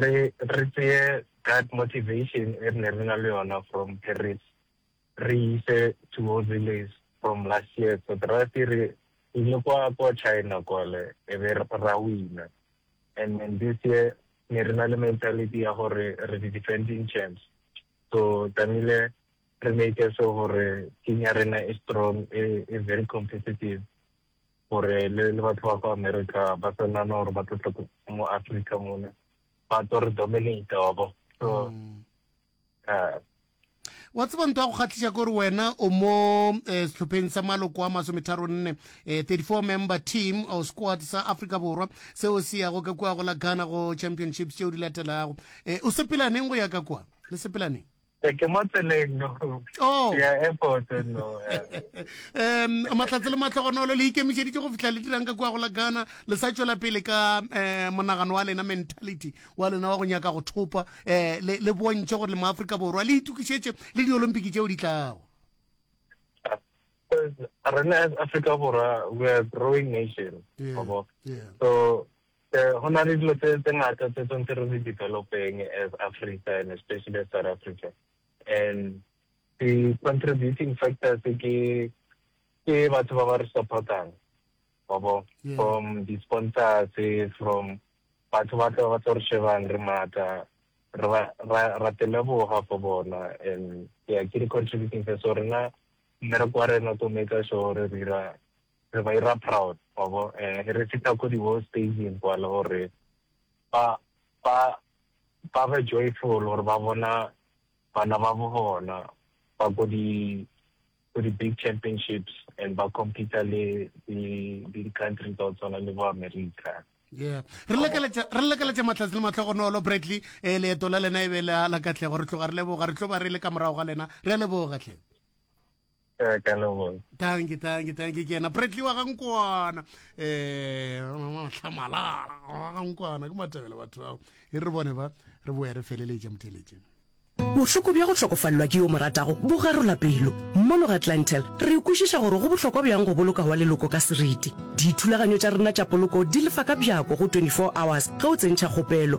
Re re tseye that motivation e re ne re na le yona from Paris re e ise to all relays from last year but ra se re ile kwa kwa China kwale e be ra wina and then this year ne re na le mentality ya gore re di defending champs so tlamehile re make sure gore team ya rena e strong e e very competitive gore le le batho ba kwa America ba sa nana gore ba tlo tla mo Africa mona ba tlo re dominata wa bo so uh, wa tseba nto ya go kgatlhisa kore wena o mo eh, setlhopheng sa maloko a masometharo nne 34 eh, member team or squad sa africa borwa seo se yago ka kua go la ghana go championships tšeo di latelago eh, o sepelaneng go ya ka kua le sepelaneng Ee, ke mo tseleng no Oh. ya airport no eh. um mahlatse le matlhogonolo le ikemišeditše go fihla le dirang ka kua go la ghana le sa tšwela pele ka um monagano wa lena mentality wa lena wa go nyaka go thopa um le le bontšhe gore le maaforika borwa le itukišetše le diolimpiki tšeo di tlago rena as africa borwa we are a growing nation Yeah, wa bo. yeah. so Go na le dilo tse ngata tse tshwanetse re di develop-eng as Africa and especially as South Africa and di contributing factors ke batho ba ba re support-ang wa bo from di sponsors from batho ba tla ba tlo re shebang re matla ra teleboga for bona and yeah ke di contributing factors so rena mmereko wa rena to make sure re dira re ba ira proud wa bo um re feta ko di world stageng kwa le gore ba ba ba be joyful gore ba bona bana ba bo bona ba ko di ko di big championships and ba compete le di country tsa go tshwana le bo america yeah re lekeletša re lekeletša matlhatsi le matlhogonolo bradley um leeto la lena e be la la katlego re tloga re leboga re tlo ba re le ka morago ga lena re a leboga tlhe Eh, ka leboga tanki tanki tanki ke yena bradley wa gankwana um eh, tlhamalala wa gankwana ke matebele batho bao e re bone ba re boya re feleletša motheletšeng bohloko bja go hlokofalelwa ke yo mo ratago bo garola pelo mmologa clantel re kwešiša gore go bohlokwa bjang go boloka wa leloko ka seriti dithulaganyo tša rena tša poloko di lefa ka bjako go 24 hours ge o tsentšha kgopelo